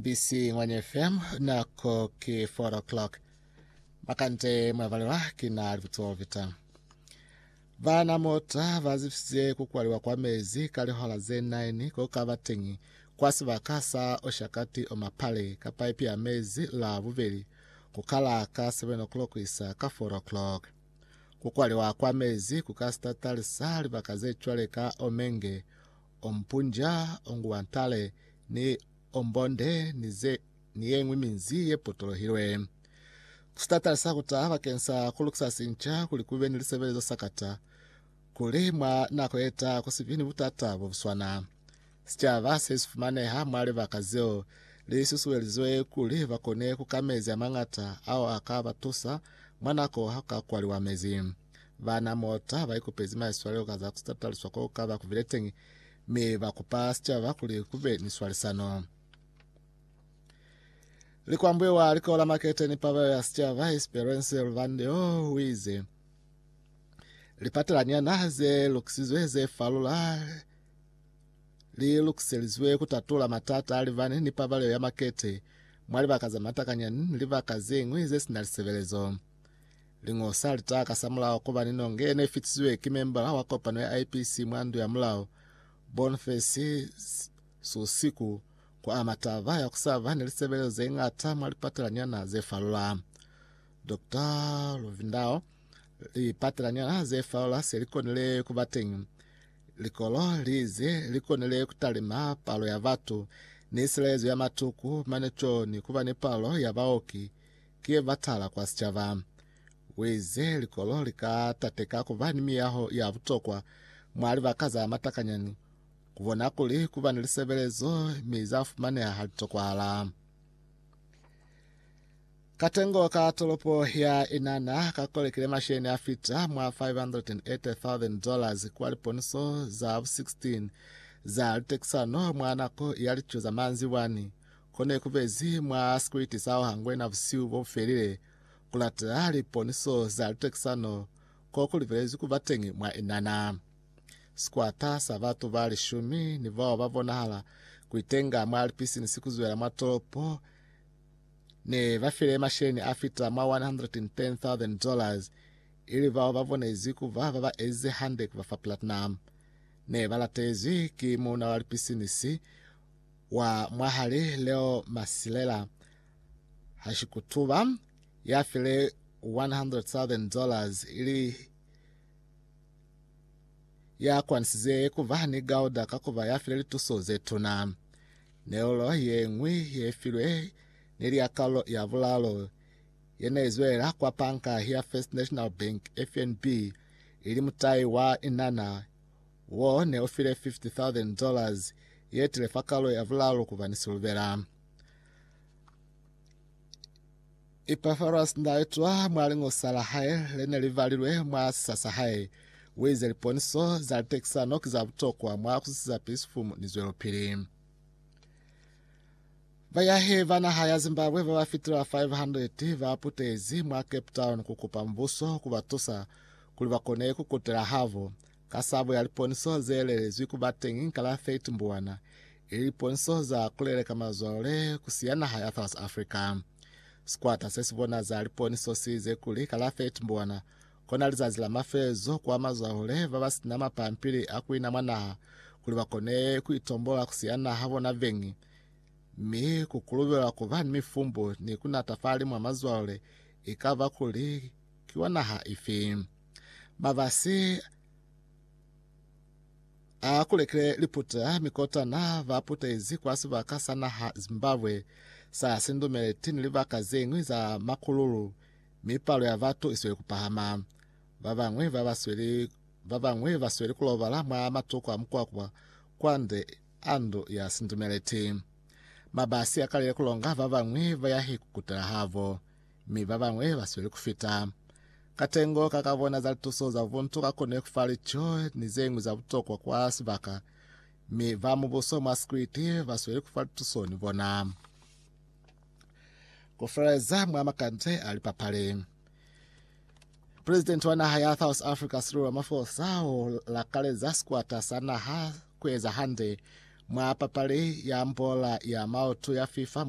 BBC Ngwanya FM, nako ki 4 o'clock. Makande mwavalelwa ki na libutsiwa vita. Bana mota bazifisize kukwaliwa kwa mezi ka lihola ze 9 ko ka ba teñi kwa sibaka sa Oshakati Omapale ka paipi ya mezi la bubeli ku kala ka 7 o'clock isa ka 4 o'clock. Kukwaliwa kwa mezi ku ka sitatalisa libaka ze cwale ka Omenge, Ompunja, Onguantale ni Ombonde ni ze ni ye ñwi minzi ye potolohilwe. Ku sitatala sa ku taha bakeng sa ku lukisa sinca kuli ku be ni lisebelezo sa kata kuli mwa nako ye taha ku si bi ni butata bo bu swana. Sicaba se si fumaneha mwa libaka zeo li susuelizwe kuli ba kone ku ka mezi a mañata ao a ka ba tusa mwa nako ha ku ka kwaliwa mezi. Bana Mota ba ikupezi maiswalelo ka za ku tataliswa ko ka ba ku bile teñi, mi ba kupa sicaba kuli ku be ni swalisano. Likwambuye wa Likolo la Makete ni Pabelo ya Sicaba, Esperance Luvandeo, o ize, Lipatelanyana ze lukisizwe ze falula li lukiselizwe ku tatula matata a libani ni pabalelo ya makete mwa libaka za matakanyani ni libaka ze ñwi ze sina lisebelezo. Lingo sa lita ka sa mulao kuba ni nonge ye ne fitisiwe ki membala wa kopano ya IPC mwa ndu ya mulao Bonface Susiku ku ama taba ya kusaba ni lisebelezo ze ngata mwa lipatelanyana ze falula. Dr. Luvindao lipatelanyana ze falula se li konile kuba teñi. Likolo lize li konile kutalima palo ya batu ni silayezo ya matuku mane co ni kuba ni palo ya baoki ki ye batala kwa sicaba. Uize likolo li ka tateka ku ba ni miyaho ya butokwa mwa libaka za matakanyani, ku bona kuli ku ba ni lisebelezo mi za fumaneha ha li tokwahala. Katengo ka tolopo ya Inana ka kolekile masheni a fita mwa 580,000 dollars kwa liponiso za bu 16 za litekisano mwa nako ya lico za manzibwani. Ko ne ku bezi mwa sikwiti sa ho hangwena busihu bo bu felile, ku latela liponiso za litekisano ko ku libelezwi ku ba teñi mwa inana. Sikwata sa batu ba lishumi ni bao ba bonahala ku itenga mwa lipisinisi ku zwela mwa tolopo ne ba file masheleñi a fita mwa $110,000, ili bao ba bonezwi ku ba ba ba ezize hande ku ba fa platinum. Ne ba latezwi ki muuna wa lipisinisi wa mwahali Leo Masilela Hashikutuba ya file 100,000 dollars ili ya kwanisize kuva ni gauda ka kuva ya file lituso ze tuna. Neulo ye ngwi ye filwe ne li ya kaulo ya bulalo ye ne izwela kwa panka ya First National Bank FNB ili mutai wa inana Wo ne u file $50,000 ye tile fa kalu ya vulalu ku ba ni silubela. Epafaras nda itwa mwa lingosa la hae le ne li valilwe mwa sisa sa hae. Wo ize liponiso za litekisano ki za butokwa mwa ku sisiza pisifumu ni zwelopili. Bayahi ba naha ya Zimbabwe ba ba fitila 500 ba putezi mwa Cape Town ku kupa mubuso ku ba tusa kuli ba kone ku kutela habo Ka sabo ya liponisoho ze lelezwi ku ba teñi ka la 30 Mbuwana, ili liponisoho za ku leleka mazwalo le ku siya naha ya South Africa. Sikwata se si bona za liponiso si ize kuli ka la 30 Mbuwana kona lizazi la mafelezo kwa mazwalo le ba ba sina mapampili a ku ina mwa naha kuli ba kone ku itombola ku siya naha bona beñi, mi ku kulubelwa ku ba ni mifumbu ni ku natafali mwa mazwalo le i ka ba kuli ki wa naha ifi. Mabasi a kulekile liputa mi kotana ba putezi kwa sibaka sa naha Zimbabwe sa sindumeleti ni libaka ze ñwi za makululu mi palo ya batu isweli kupahama. Ba bañwi ba basweli ba bañwi basweli kulobala mwa matuku a mukwakwa kwande a ndu ya sindumeleti. Mabasi akalile kulonga ba bañwi bayahi kukutela habo. mi babañwi basweli kufita. Katengo ka kabona za lituso za buntu kakone kufa lico ni zeñwi za butokwa kwa sibaka, mi ba mubuso mwa sikwiti basweli kufa lituso ni bona. Kufeleza mwa makande a lipapali. Presidenti wa naha ya South Africa Cyril Ramaphosa o lakaleza sikwata sa naha kueza hande mwa papali ya mbola ya maoto ya FIFA mwa